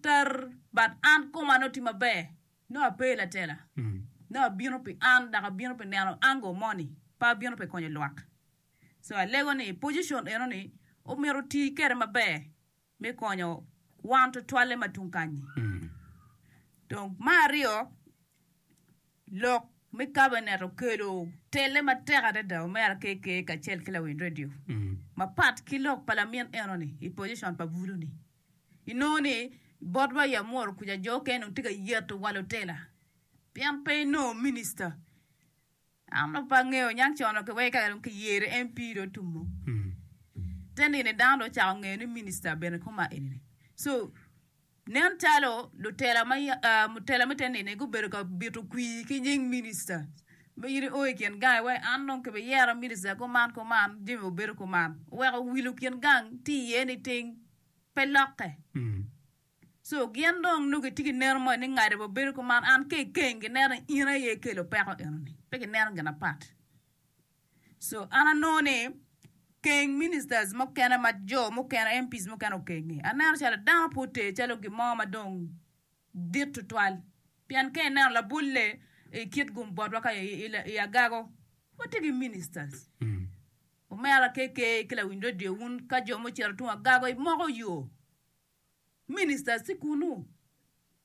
ter but an koma nongo tye maber nongo ape i latela nongo abino pi an dok abino pi neno angle mo ni pe abino pi konyo lwak so alego ni position eno ni omyero oti kede maber me konyo wan tutwalle ma tung kanyi dong ma aryo Lok me kabinet okelo telle matek adada omera KK kacel ki lawiny radio mapat ki lok pa lamin eno ni i position pa bulu ni. Inongo ni bot wa i Amuru kuca jo okene dong tye ka yeto wa lutela pien pe inongo minister. An dong pe angeyo niang cono ki weko kaka dong ki yere MP dong otumo. Te nino dano dong ocako ngeyo ni minister bene koma eni ni. So Nen calo lutela me te nino-ni gubedo ka bito kwir ki nying minista ma in io i kin gangi wek an dong kibiyera minista kuman kuman, Jimmy obedo kuman oweko wilo kin gang tye iye niting pe lokke. Co gin dong nongo gitye ki neno moni ni ngado babedo kuman an kekeng gineno ni in aye ikelo peko enoni, pe gineno gin apat. So an anongo ni keng ministers mukene ma jo mukene MPs mukene okengi aneno calo dano pe oter calo gin mo ma dong dit tutwal pien ka ineno labolle i kit gum botwa ka i agago watye ki ministers omera KK ki lawiny radio wun ka jo mucito tung agago imoko yo ministers tye kunu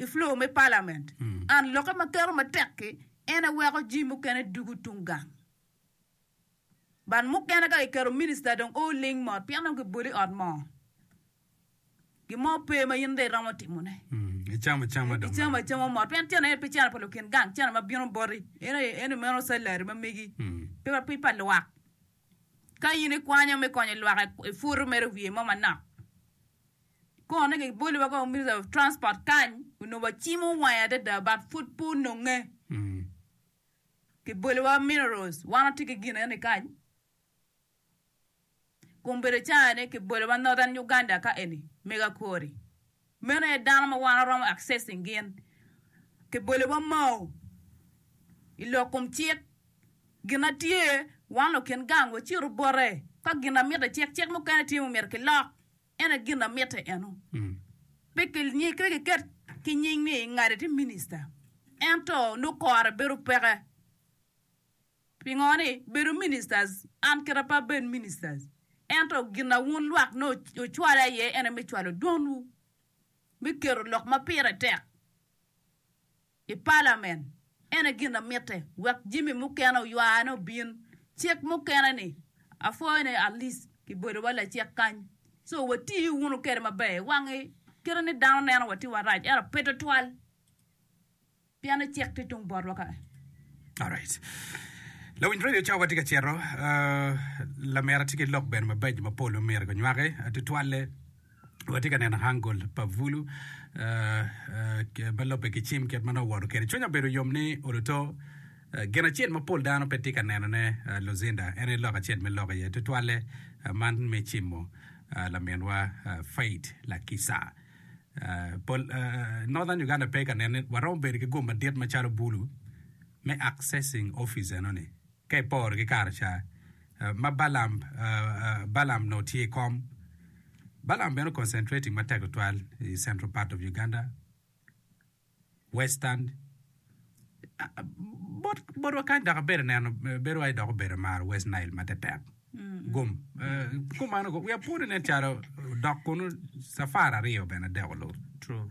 I floor me Parliament, an lokke ma keto matek ki en aye weko jii mukene dugu tung gang. But mukene ka kiketo minister dong oo ling mot pien dong kiboli ot moo. Gin mo pe ma in dong iromo timo ne. Icamo acama dong. Icamo acama mot pien cene en pe cene pa lukin gang, cene ma bino boti. En aye en meno salary ma megi. Pe pe pa lwak. Ka in ikwanyo me konyo lwak ifutu mere wiye mo manok. Kikono ni kiboli wa kong Minister of Transport kany onongo wacimo wange adada but pud pe ononge. Kiboli wa minerals wan watye ki gin eni kany. Kun bedo caa ni kiboli wa Northern Uganda ka eni mega kori. Meno aye dano ma wan waromo accessing gin. Kiboli wa mau i lok kom cik. Gin na tye wan lukin gang wacito bote ka gin na miti cik cik mukene tye ma omyero kilok. En aye gin amite eno. Pe kiket ki nying ni ngati tye minista, ento nongo kore bedo peke. Pingo ni bedo ministers, an kite pe abed ministers, ento gin ma wun lwak nongo ocwala iye en aye me cwalo dwonwu, me keto lok ma pire tek. I palament, en aye gin amitte wek jami mukene oywane obin. Cik mukene ni, apwoyo ni Alice kibedo wa lacik kany, so wati wunu kede maber i wangi kite ni dano neno wa tye warac ento pe twatwal pien ni cik tye tung botwa kany. Alright. Lawiny radio cawa tye ka cito. Lamera tye ki lok bene mabeco mapol ma myero gunywaki. Tutwalle. watye ka neno hangul pa bulu ma lobbe ki cim kit ma nongo owoto kwede. Cwinya obedo yom ni Oluto gin acel ma pol dano pe tye ka nenone Lucinda en aye lok acel me lok iye tutwalle man me cimo laminwa Faith Lakisa. Pol Northern Uganda pe ka nene waromo bedo ki gum madit macalo bulu me accessing office enoni. Ka iporo ki kare ca ma Balaam Balaam nongo tye i kom, Balaam bene concentrating matek tutwal i central part of Uganda, western, bot botwa kany dok abedo neno bedo wai dok obedo maro West Nile matetek gum kumano we are putting it calo dok kunu safar aryo bene deko lur. True.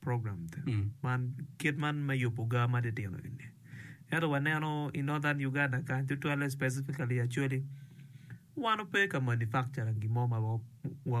program man kit man me yubu gaa ma titino eni ento wa neno i northern Uganda kany tutwalle specifically acholi wan ope ka manufacturing gin mo ma wa